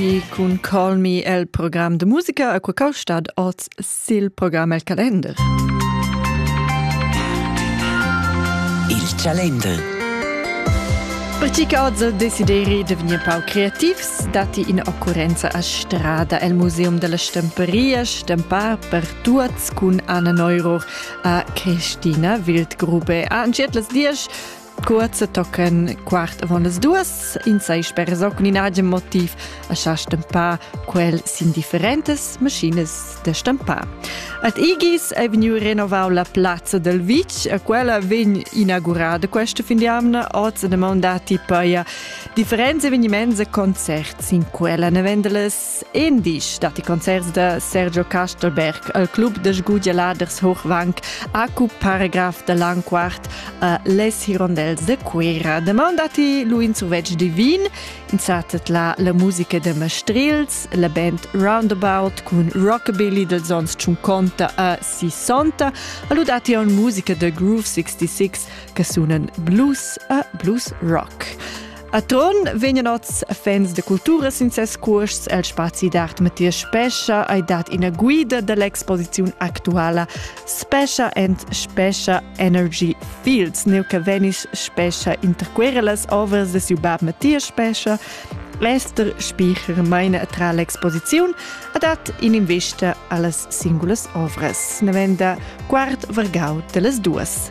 Di cun calmi el program de musica a quacau stad oz sil program el calender. Il calender. Percic oz desideri de venir pau creativs, dati in occurrenza a strada el Museum della Stamperia, stampar per tuots cun Anna Neuror a Christina Wildgrube. A antschetlas dies Kurze tocken quart avon las duas, in sei sper soc in agen motiv, a sa stampar quel sin differentes maschines da stampar. Ad Igis è vegniu renovau la plazza del Vic, a quella vegn inaugurada questa fin di amna oz e demandati poi differenze avvenimenze concerts in quella nevendeles Endisch dat i concerts da Sergio Castelberg al club da sgugialaders Hochwank acu paragraf da Lanquart a les Hirondels de Cuera. Demand atti lu in survetsch divin, insatet la la musica de Mastrils, la band Roundabout cun Rockabilly dels ons 50 a 60, alu datti on musica de Groove 66 che sunan blues a blues rock. A Trun vegnan oz fans da cultura sin ses cuosts el spazi d'art Matthias Spescha hai dat ina guida dall'exposiziun actuala Spescha and Spescha Energy Fields, neu che vegnis Spescha interquera las ovras de siu bab Matthias Spescha. Esther Spiecher meina tra l'exposiziun ha dat in'invista allas singulas ovras. Ne venda quart vargau dellas duas.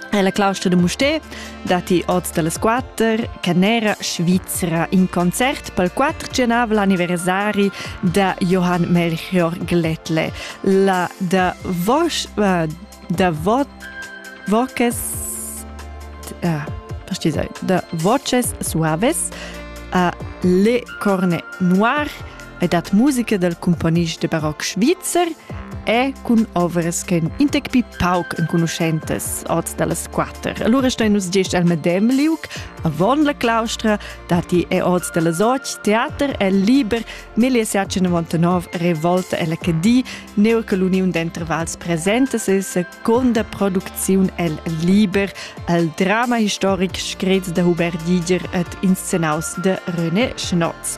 È la claustra da Musté datti oz da las quatter canera svizra in concert pel quattrenavel anniversari da Johann Melchior Glätle. La da Vosch äh, da Vo Voces äh, da Voces Suaves a Le Corne Noir e dat musica dal cumponist de baroc svizzer e cun ovras che ein intec pi pauc enconuschentas oz dallas quatter. Allora stein nus gest al medem liuc, avon la claustra, dati e oz dallas och, teater e liber, 1799 revolta e la cedi, neu che l'uniun d'entervals presenta se seconda produziun el liber, al drama historic screts da Hubert Diger et inscenaus de René Schnotz.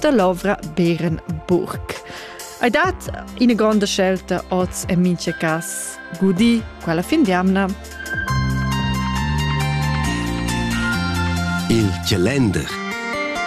da l'ovra Bärenburg. Hai dat ina gronda scelta oz en mincha cas gudi quella fin d'amna. Il calender